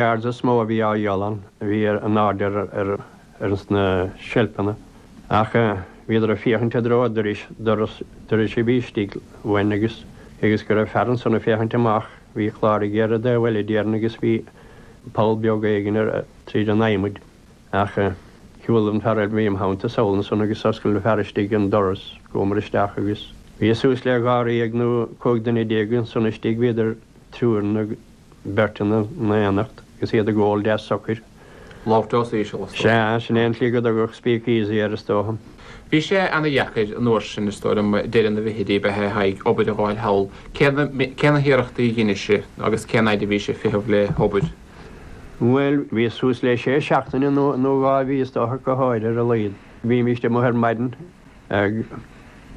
Arán is mó a bhí á dhíol ann a bhí in airde ar ar sna seilpeanna ach bhíodar ag féachaint i dtreo dorais doras dorais a bhí istigh uainn agus agus go raibh fear ansan ag féachaint amach bhí clár ag iarraidh do bhuille d'iarann agus bhí poll beag éigin air tríd an adhmad ach shiúil an fear a bhí im theannta sall ansan agus d'oscail an fear istigh an doras chuamar isteach agus bhí suas le dháréag nó cúig duine déag ansan istigh bhíodar triúr nó beirt in éineacht agus iad ag ól deas socair. Labhairt os íseal, is dócha. Sea, sin é an tslí go dtugadh Speak Easy air, is dócha. Bhí sé ana dheacair an uair sin, is dócha, deireadh na bhfichidí, a bheith ag iarraidh obair a dh'fháil thall. Cé na hiarrachtaí a dheinis-se agus cén fhaid a bhís-se ag feitheamh le h-obair? Bhuel, bhíos suas le sé seachtaine nó dhá mhí, is dócha, go háirithe ar a laghad. Bhímíst amuigh ar maidin ag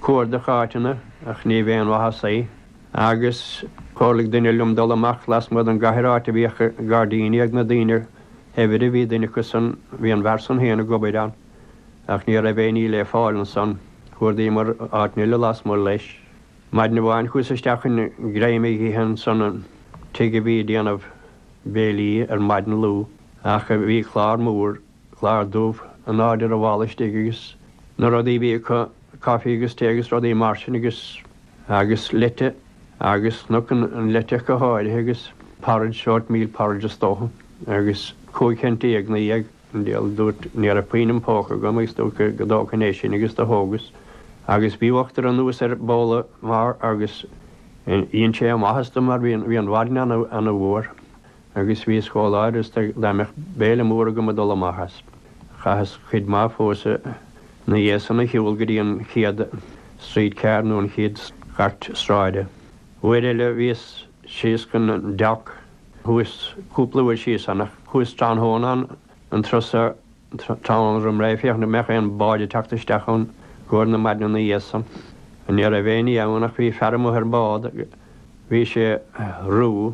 cuardach áiteanna ach níorbh aon mhaitheas é. Agus chomhairligh duine liom dul amach lasmuigh don gcathair áit a bhíodh gairdíní ag na daoine saibhre. Bhí duine acu san, bhí an fear san féin ag obair ann ach ní raibh aon ní le fáil ansan. Chuardaíomar áiteanna eile lasmuigh leis. Maidin amháin chuas isteach chun greim a dh'ithe ansan an tigh a bhí ag déanamh béilí ar maidin ana luath. Ach bhí clár mór clár dubh, in airde ar an bhfalla istigh agus na rudaí a bhí acu, coffee agus tae agus rudaí mar sin agus, agus leite agus chonac an leite go háirithe agus porridge, oatmeal porridge is dócha agus cúig cent déag, naoi dhéag an deal, dúrt, ní raibh puinn im póca agam agus dúrt go, go dtógfainn é sin agus do thógas agus bhí uachtar anuas air, babhla mór agus dhein sé ana mhaitheas dom mar bhí an, bhí an mhaidin ana, ana fhuar Agus bhíos chomh láidir is dá mbeadh béile mór agam ag dul amach as. Chaitheas cuid mhaith fós ina dhiaidh san a shiúl go dtí an chéad streetcar nó an chéad chairt sráide. Uair eile bhíos síos chun an Dock, chuas cúpla uair síos ann ach chuas tráthnóna an turas so tráthnóna roim ré féachaint an mbeadh aon bád ag teacht isteach ann i gcomhair na maidine ina dhiaidh san. Ní raibh éinní ann ach bhí fear amuigh ar an bhád, bhí sé ruadh,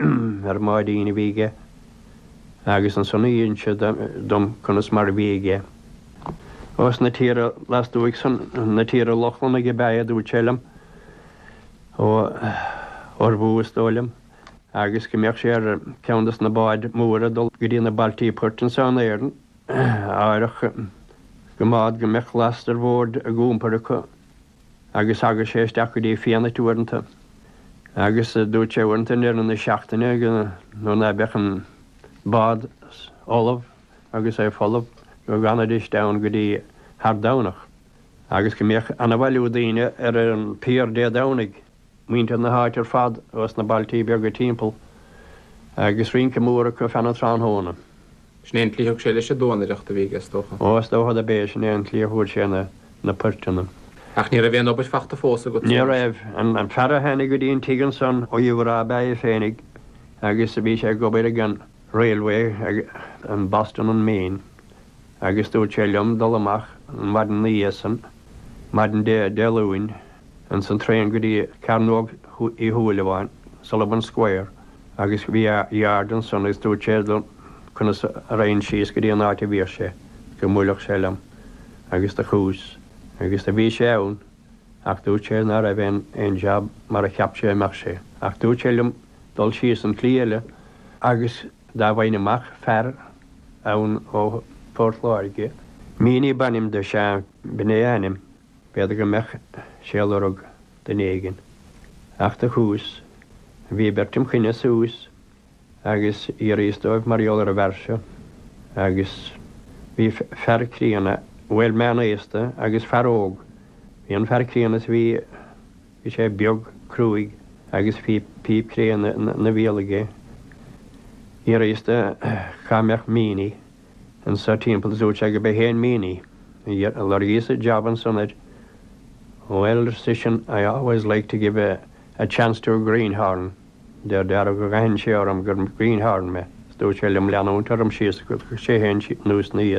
ar Mháirín a bhí aige agus ansan d'inis sé dom conas mar a bhí aige. Ós na tíortha lastuaidh san, na tíortha Lochlannach ab ea é a dúirt sé liom, ón Orbhuaidh is dóigh liom, agus go mbeadh sé ar cheann des na báid mhóra dul go dtí na bailtí poirt anso in Éirinn, áirithe go mbeadh go mbeadh last ró mhór á iompar acu agus thagadh sé isteach go dtí Fianait uaireanta agus dúirt sé uaireanta i ndeireadh na seachtaine nuair ná beadh an bád ullamh agus é folamh go bhfanaidís ann go dtí thar Domhnach agus go mbeadh an-bhailiú daoine ar an piar Dé Domhnaigh. muintir na háite ar fad agus na bailtíní beaga timpeall agus rince mór acu feadh na tráthnóna. Sin é an tslí thug sé leis an duanaireacht a bhí aige is dócha. Ó is dócha do b'é sin é an tslí a fuair sé na poirteanna. Ach ní raibh aon jab fachta fós agat? Ní raibh. An fear a tháinig go dtí an tigh ansan ó Uíbh Ráthach ab ea é féinig agus bhí sé ag obair ag an railway ag an Boston and Maine agus dúirt sé liom dul amach an mhaidin 'na dhiaidh san, maidin Dé Luain. Ins an traen go dtí Cearnóg Uí Shúilleabháin, Sullivan Square, agus bhí a yard ansan agus dúirt sé dom conas a raghainn síos go dtí an áit a bhíodh sé, go mbuailfeadh sé liom agus do chuas síos agus do bhí sé ann ach dúirt sé ná raibh aon aon job mar a cheap sé a mbeadh sé ach dúirt sé liom dul síos an tslí eile agus dá bhfaighinn amach fear ann ó Phort Láirge, Meaney b'ainm do, sea, b'in é a ainm. B'fhéidir go mbeadh sé ag lorg duine éigin, ach do chuas, bhí beirt im choinne suas agus d'fhiafraíos dóibh mar gheall ar an bhfear seo agus bhí fear críonna, bhuel, meán aosta agus fear óg. Bhí an fear críonna is bhí sé beag, cruaidh agus bhí píp cré ina bhéal aige. D'fhiafraíos cá mbeadh Meaney. anso timpeall is dúirt sé gurb é féin Meaney. Do loirgíos an job ansan air. Bhuel, ar seisean, I always like to give a, a chance to a greenhorn, fé ndeara gur aithin sé orm gur greenhorn mé, is dúirt sé liom leanúint orm síos agus sé féin anuas ina dhiaidh.